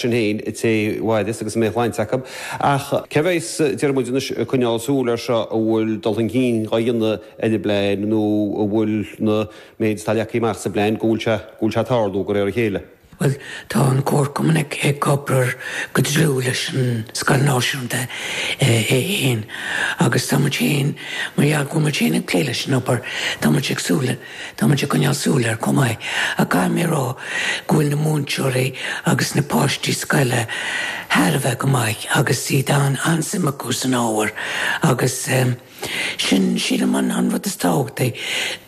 sin fhéin cé fadó as agus an méid shlainte acu. Ach cé bheidh Diarmuid anois ag coinneáil súil air seo an bhfuil dul chun cinn á dhéanamh ar an bplean nó an bhfuil an méid atá leagtha amach sa bplean go bhfuil sé go bhfuil sé ag tarlú de réir a chéile? Bhuel tá an Comharchumann ag obair go dlúth leis an Scoil Náisiúnta é fhéin agus tá muid fhéin mar gheall go bhfuil muid fhéin ag plé leis an obair tá muid ag súil Táimid ag coinneáil súil air chomh maith ach caithfidh mé a rá go bhfuil na múinteoirí agus na páistí scoile thar a bheith go maith agus an-suim acu san ábhar agus sin, sílim, an rud is tábhachtaí,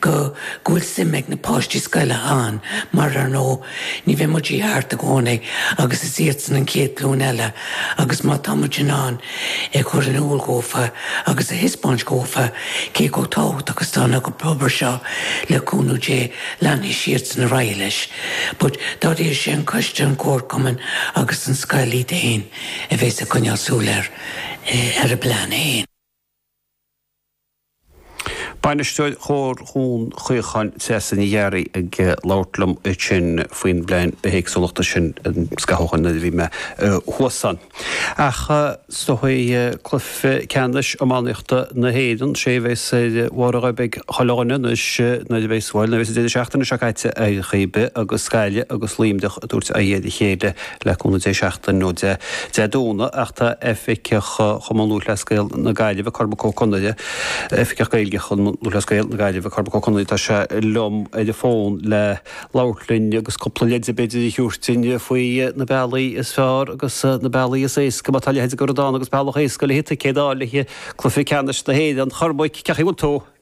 go bhfuil suim ag na páistí scoile ann mar, ar ndóigh, Ní bheidh muid thart i gcónaí agus is iadsan an chéad ghlúin eile agus má tá muid in ann é a chur in iúl dhófa agus a thispeáint dhófa cé chomh tábhachtach is atá an obair seo le cúnamh Dé leanfaidh siadsan ar aghaidh leis. But dáiríre sé an coiste, an comharchumann agus an scoil iad fhéin a bhéas ag coinneáil súil ar a bplean fhéin. Bainisteoir Chomhar Dún Chaocháin, Treasa Ní Ghearraí ag labhairt liom ansin faoin bplean bithéagsúlachta sin, sa gCeathrú Thaidhg nuair a bhí mé thuas ann. Ach seo hé cluiche ceannais iománaíochta na hÉireann, sé a bhéas ar bhórd ag chuile dhuine anois nuair a bhéas, bhuel, nuair a bhéas an deireadh seachtaine seo caite ar chaoi ar bith agus Gaillimh agus Luimneach ag tabhairt aghaidh ar a chéile le cúnamh Dé seachtain ón Dé Domhnaigh ach tá Oifigeach Chumann Lúthchleas Gael na Gaillimhe, Cormac Ó Conaire, Oifigeach Gaeilge Chumann Lúthchleas Gael na Gaillimhe, Cormac Ó Conaire, tá sé liom ar an bhfón le labhairt linn agus cúpla leide b'fhéidir a thiúirt duinn faoi na bealaí is fearr agus na bealaí is éasca má tá leithéid de rud ann agus bealach éasca le ticéad a fháil le haghaidh Cluiche Ceannais na hÉireann. Chormaic, cén chaoi a bhfuil tú?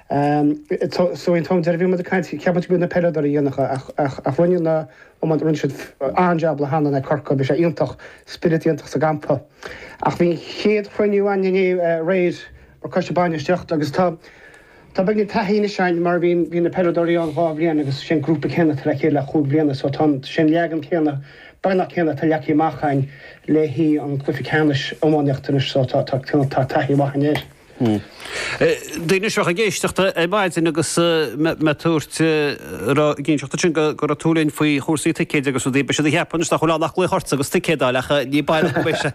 So an t-am deireadh a bhí muid ag caint, cheap muid go mbeadh na peileadóirí á dhéanamh ach ach rinne na iománaithe, rinne siad an-jab in aghaidh Corcaigh, bhí sé iontach, spiorad iontach sa gcampa. Ach bhí an chéad chruinniú againn inné aréir mar coiste bainistíochta agus tá tá beagán taithí anois againn mar bhí bhí na peileadóirí ann dhá bhliain agus sé an grúpa céanna atá le chéile le chúig bhliana so tá an sé an leagan céanna, beagnach céanna atá leagtha amach againn le haghaidh an cluiche ceannais iománaíochta anois so tá tá tá taithí mhaith againn air. Daoine anseo ag éisteacht ar maidin agus mé ag tabhairt ceannteideal ansin go raibh tú le labhairt linn faoi chúrsaí ticéid agus rudaí, beidh siad ag ceapadh anois nach bhfuil ann ach glaoch ortsa agus ticéad a fháil ach ní baileach go mbeidh sé,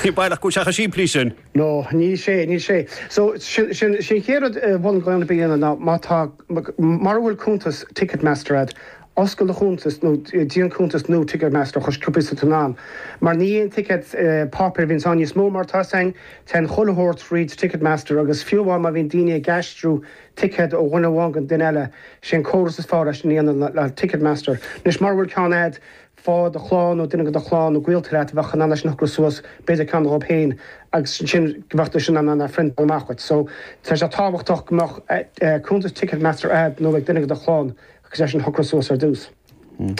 ní baileach go bhfuil sé chomh simplí sin. No, níl sé, níl sé. So, sin, sin, sin chéad rud i bhun glaonna a dhéanamh ná má tá, mura bhfuil cuntas Ticketmaster agat, Oscail do chuntas nó déan cuntas nua Ticketmaster anois cuimhnigh mar níl aon ticéad páipéir a bhíonn ann níos mó mar tá siad ag déanamh chuile shórt fríd Ticketmaster agus fiú amháin má bhíonn daoine ag aistriú ticéad ó dhuine amháin go duine eile sé an córas is fearr leis sin a dhéanamh ná Ticketmaster anois mura bhfuil ceann a'd faigh duine go do chlann nó duine go do chlann nó gaolta leat a bheadh in ann é sin a shocrú suas b'fhéidir ceann dhób féin agus ansin go bheadh siad sin in ann a phriontáil amach dhuit so tá sé tábhachtach go mbeadh cuntas Ticketmaster a'd nó ag duine go do chlann. Agus é sin a shocrú suas ar dtús.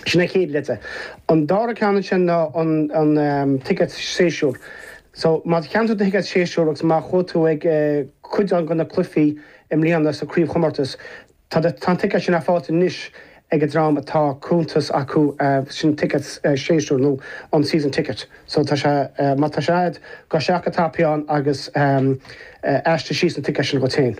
Sin an chéad leid é. An dara ceann ansin ná an ticéad séasúr. So má cheannaigh tú do thicéad séasúr agus má chuaigh tú ag cuid de na cluichí i mbliana sa craobhchomórtas, tá an ticéad sin ar fáil anois ag an dream atá cuntas acu, sin ticéad séasúr nó an season ticket. So tá sé, má tá sé agat, gabh isteach i do chuntas féin agus aistrigh síos an ticéad sin dhuit féin.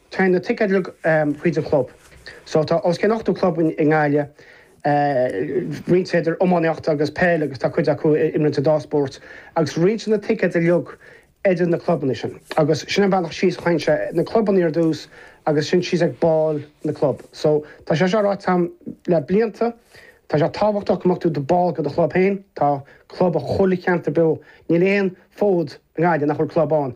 Téann na ticéid uilig chuig chuile chlub so tá os cionn 80 club i nGaillimh, roinnt idir iománaíocht agus peil agus tá cuid acu ag imirt an dá spóirt agus roinntear na ticéid uilig idir na clubanna sin agus sin an bealach síos a théann sé, na clubanna ar dtús agus ansin síos ag baill na gclub. So tá sé seo ráite a'm le blianta, tá sé tábhachtach go mbeadh tú i do bhall go do chlub féin, tá club ag chuile cheantar beag, níl aon fód i nGaillimh nach bhfuil club ann.